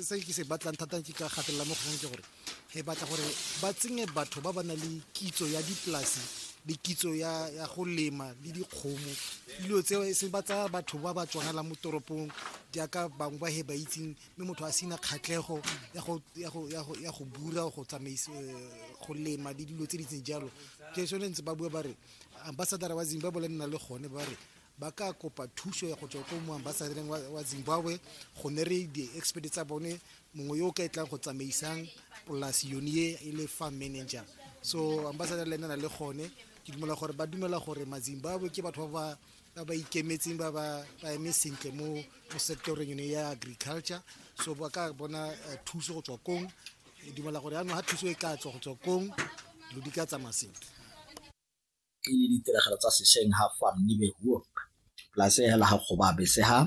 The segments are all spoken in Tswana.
se ke se batlang thata ke ka gatelela mo kgang ke gore e batla gore ba tsenye batho ba ba na le kitso ya dipolase le kitso ya ya go lema le dikgomo dilo tseo e se ba tsaya batho ba ba tswanela mo toropong jaaka bangwe ba he ba itseng mme motho a sena kgatlhego ya go ya go ya go ya go bura go tsamaisa go lema le dilo tse di tseng jalo ke sone ntse ba bua ba re ambassador wa Zimbabwe le nna le gone ba re ba ka kopa thuso ya go tswa ko moambasadreng wa zimbabwe gone re di-expert tsa bone mongwe yo o ka e tlang go tsamaisang polasi yone ye e le farm manager so ambassador le ena na le gone ke dumela gore ba dumela gore mazimbabwe ke batho ba ba ba ikemetseng ba ba ba eme sentle mo mo sectoreng yone ya agriculture so ba ka bona eh, thuso go tswa kong ke dumela gore yaanong ga thuso e ka tswa go tswa kong dilo di ka tsamaya sentle ke le ditiragalo tsa sešeng ha fa nnibe huo polase ya hela ga kgoba bese ha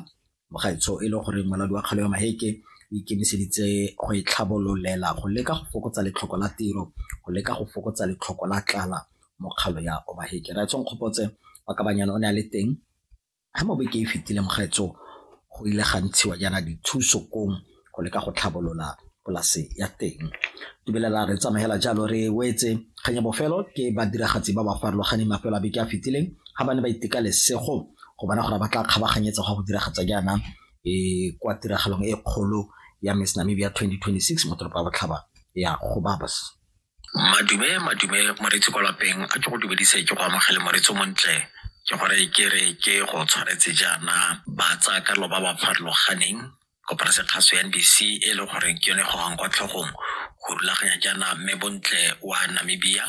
mogaitsho e le gore moladi wa kgalo ya maheke o ikemiseditse go e tlhabololela go leka go fokotsa letlhoko la tiro go leka go fokotsa letlhoko la tlala mo kgalo ya omaheke ra etshong kgopotse wa kabanyana o ne a le teng Ga mo beke e fetile Mokgetso go ile ga ntshiwa jaana dithuso kong go leka go tlhabolola polase ya teng. Tumelela re tsamaela jalo re wetse kgang ya bofelo ke badiragatsi ba ba farologaneng mafelo a beke a fetileng ga ba ne ba iteka lesego go bona gore ba tla kgabaganyetsa go go diragatsa jaana e kwa tiragalong e kgolo ya Miss Namibia 2026 mo toropo ya Botlhaba ya Gobabis. madume madume moretsi kwa lapeng a ke go dumedise ke go amogele moretsi montle ke gore ke re ke go tshwanetse jaana ba tsaya karolo ba ba farologaneng kopana sekgaso ya ndc e le goreng ke yone gogang kwa tlhogong go rulaganya jaana mme bontle wa namibia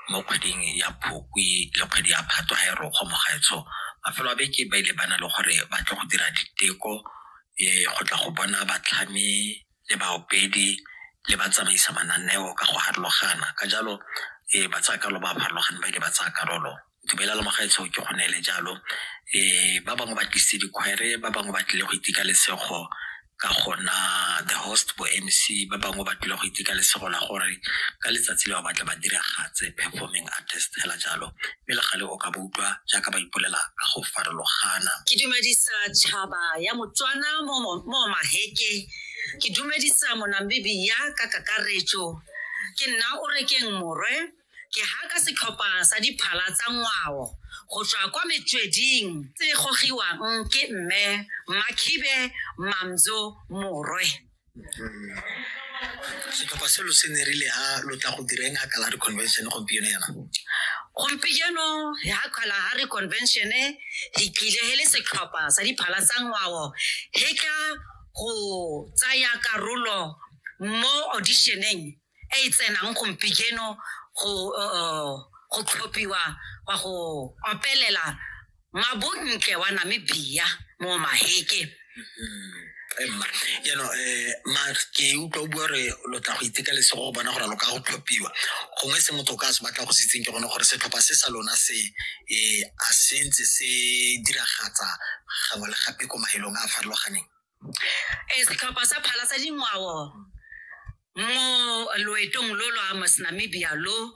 mo kgweding ya phukwi le kgwedi ya phatwa ga e rokgo mogaetsho mafelo a beke ba ile ba na le gore ba tle go dira diteko um go tla go bona batlhami le baopedi le ba tsamaisa mananeo ka go harologana ka jalo e ba tsaya karolo ba ba farologane ba ke ba tsaya karolo dumela le mogaetsho ke go neele jalo um ba bangwe ba tlisitse dikgwere ba bangwe ba tlile go itika lesego ka gona the host bo m c ba bangwe ba tlile go itika lesego la gore ka letsatsi le ba batla ba diragatse performing artist fela jalo mme le gale o ka ba utlwa jaaka ba ipolela ka go farologana. Ke dumedisa tšhaba ya Motswana mo mo mo Maheke. Ke dumedisa Monamibia ka kakaretso. Ke nna o rekeng morwe. Ke haka setlhopha sa diphala tsa ngwao go tswa kwa metsweding tse gogiwang ke mme Makhibe Mamzo Morwe. setlhopha selo se ne rile ha lo tla go direng ha kalare convention gompieno yana gompieno ya kgala ha re convention e re tlile he le setlhopha sa diphala tsa ngwao he ka go tsaya karolo mo auditioneng e e tsenang gompijeno go uh, go tlhophiwa wa go opelela mabontle wa namibia mo maheke mm-hmm. jaanong um max ke utlwa o bua gore lo tla go itekalese go bona gore lo ka go tlhophiwa gongwe se motho o ka se batla go setseng ke gone gore setlhopha se sa lona se um a sentse se diragatsa gangwe le gape ko maelong a a farologaneng ee setlhopha sa phala sa dingwao mo loetong lo lo amas namibia lo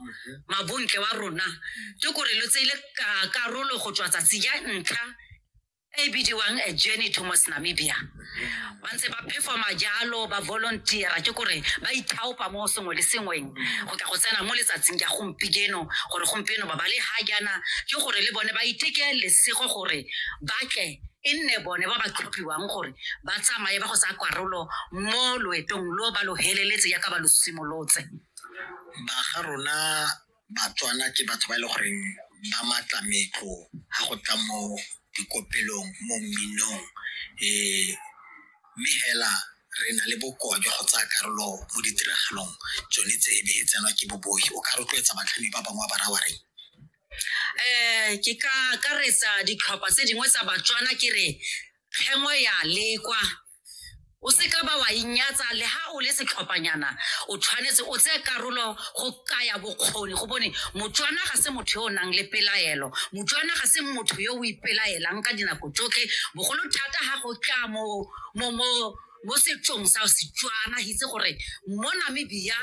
mabontle wa rona ke kore lo tseile ka- karolo go tswa tsatsi ya ntlha e bidiwang a journey to mos namibia ba ntse ba performa jalo ba volunteera ke kore ba ithaopa mo sengwe le sengweng go tla go tsena mo letsatsing ya gompieno gore gompieno ba ba le ga jaana ke gore le bone ba iteke lesego gore ba tle e nne bone ba ba tlhophiwang gore ba tsamaye ba go tsaya karolo mo loetong lo ba lo heleletse yaka ba lo simolotse ba ga rona batswana ke batho ba e le goreng ba matla metlo ga go tla mo dikopelong mo mminong um mme fela re na le bokoa jwa go tsaya karolo mo ditiragalong tsone tse e be e tsenwa ke bobogi o ka rotloetsa batlhami ba bangwe ba raya wa reng um ke ka akaretsa ditlhopha tse dingwe tsa batswana ke re kgengwe ya lekwa o seka ba wa inyatsa le ha o le setlhophanyana o tshwanetse o tseye karolo go kaya bokgoni go bone motswana ga se motho yo o nang le pelaelo motswana ga se motho yo o ipelaelang ka dinako tsotlhe bogolo thata ga go tla mo mo mo mo setsong sa Setswana re itse gore mo Namibia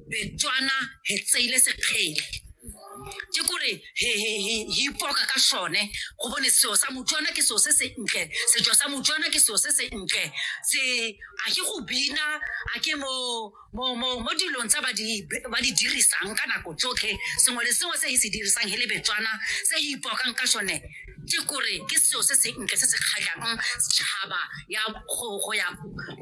Betswana he tseile sekgele ke kore he he he he ipoka ka sone go bone seo sa Motswana ke seo se se ntle setso sa Motswana ke seo se se ntle se a ke go bina a ke mo Mo, mo, mo dilong tse ba di, ba di dirisang ka nako tsotlhe sengwe le sengwe se e se dirisang e le betswana se e ipokang ka sone ke kore ke seo se se ntle se se kgatlhang setšhaba ya go go ya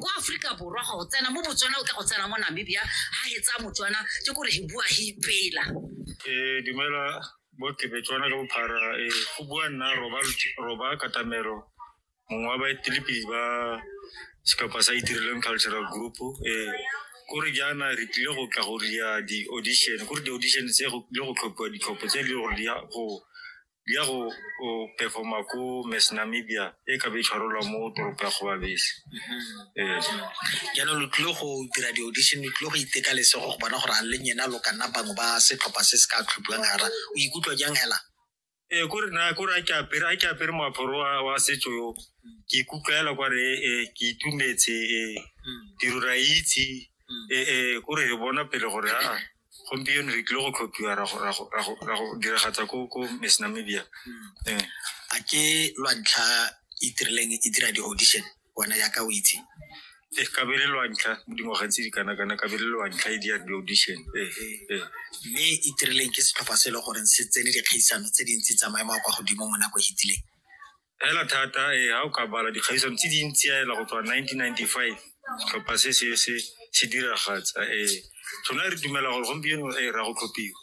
ko aforika borwa go tsena mo botswana o tla go tsena mo namibia ha e tsaya motswana ke kore e bua e ipela Eh, dumela bo ke Betswana ka bophara eh, go bua nna roba Lutsh- roba katamelo mongwe wa baetelepele ba setlhopha sa itirelang cultural group um kore jaana re tlile go tla go ria di-audition kore di-audition tse go tlile go tlhophiwa ditlhopho tse di gore di ya go di ya go go performa ko mass namibia e ka be e tshwarelwa mo toropo ya kgobabese ee jaanong lo tlile go dira di-audition lo tlile go iteka lesego go bona gore a leng ena lo ka nna bangwe ba setlhopha se se ka tlhophiwang gara o ikutlwa jang hela ee kore na kore a ke apere a ke apere moaparo wa wa setso yo ke ikutlwa hela kware ee ke itumetse ee tiro ra itse ee kore re bona pele gore aa gompieno re tlile go tlhophiwa ra go- ra go- ra go- ra go diragatsa ko ko miss namibia ee a ke lwa ntlha e tirileng e dira di-audition wena yaka o itse Eh, kabele lwantlha mo dingwageng tse di kana-kana kabele lwantlha e di ya di-audition Eh, eh. mme e tirileng ke setlhopha se e le goreng se tsene dikgaisano tse dintsi tsa maemo a kwa godimo mo nako e hitileng fela thata ee ga o ka bala dikgaisano tse dintsi yaela go tswa nineteen ninety-five setlhopha se se se se diragatsa ee sona re dumela gore gompieno ee ra go tlhophiwa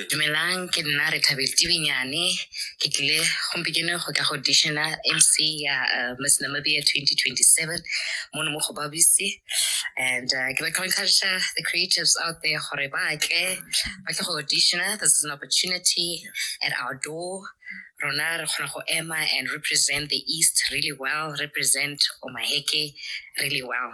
dumelang ke nna re thabetse tibenyane ke tlile gompieno go ka go dishena mc ya uh, miss namibia 2027 mono mo go babise and uh, ke batla go encourage the creatives out there gore ba tle ba tle go dishena this is an opportunity at our door rona re kgona go ema and represent the east really well represent omaheke really well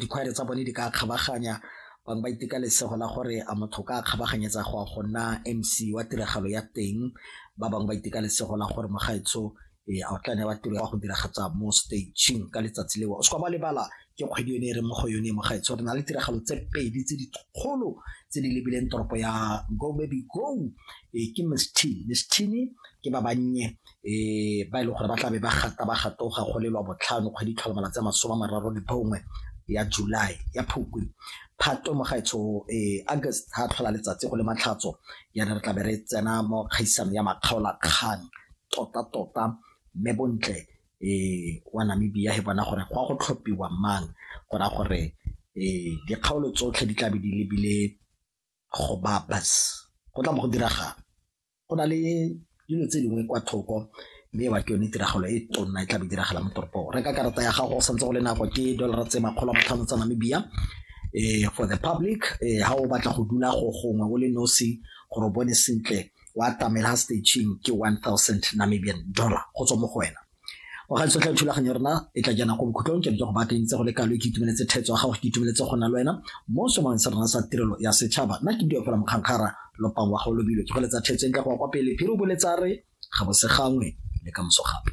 dikhwaere tsa bone di ka kgabaganya bangwe ba iteka lesego la gore a motho ka kgabaganyetsa go a go nna mc wa tiragalo ya teng ba bangwe ba iteka lesego la gore mogaetsho ee a o tla ne wa tiro ya go diragatsa mo stageng ka letsatsi leo o se kwa ba lebala ke kgwedi yone e re mo go yone mogaetsho re na le tiragalo tse pedi tse dikgolo tse di lebileng toropo ya go baby go ee ke mistine mistine ke ba bannye um ba e leng gore ba tlabe ba gata ba gatoga go lelwa botlhano kgwedi tlhola malatsi a masome a mararo le bongwe ya july ya phukwi phato mo gaetsho um august ga tlhola letsatsi go le matlhatso yana re tlabe re tsena mo kgaisano ya makgaolakgang tota-tota mme bontle um wa namibia he bona gore go ya go tlhophiwa mang go raya gore um dikgaolo tsotlhe di tlabe di lebile go babas go tla mo go diragang Go na le dilo tse dingwe kwa thoko mme ewa ke yone tiragalo e tonna e tla be diragala mo toropong reka karata ya gago santse go le nako ke dollar tse makgolo a matlhano tsa namibia um for the public um ha o batla go dula go gongwe o le nosi gore o bone sentle wa tamela staging ke one thousand namibian dollar go tswa mo go wena o ga tsotlhe thulaganyo rena e tla jana go bokhutlong ke go batleng tse go le kalo ke itumeletse thetso ga go ke itumeletse go na le wena mo somang sa rena sa tirelo ya setšhaba nna ke diopela mokgankgara lopang wa go lobilo ke go letsa thetso e ntle go ya kwa pele phiri o boletsa re ga bose gangwe le ka moso gape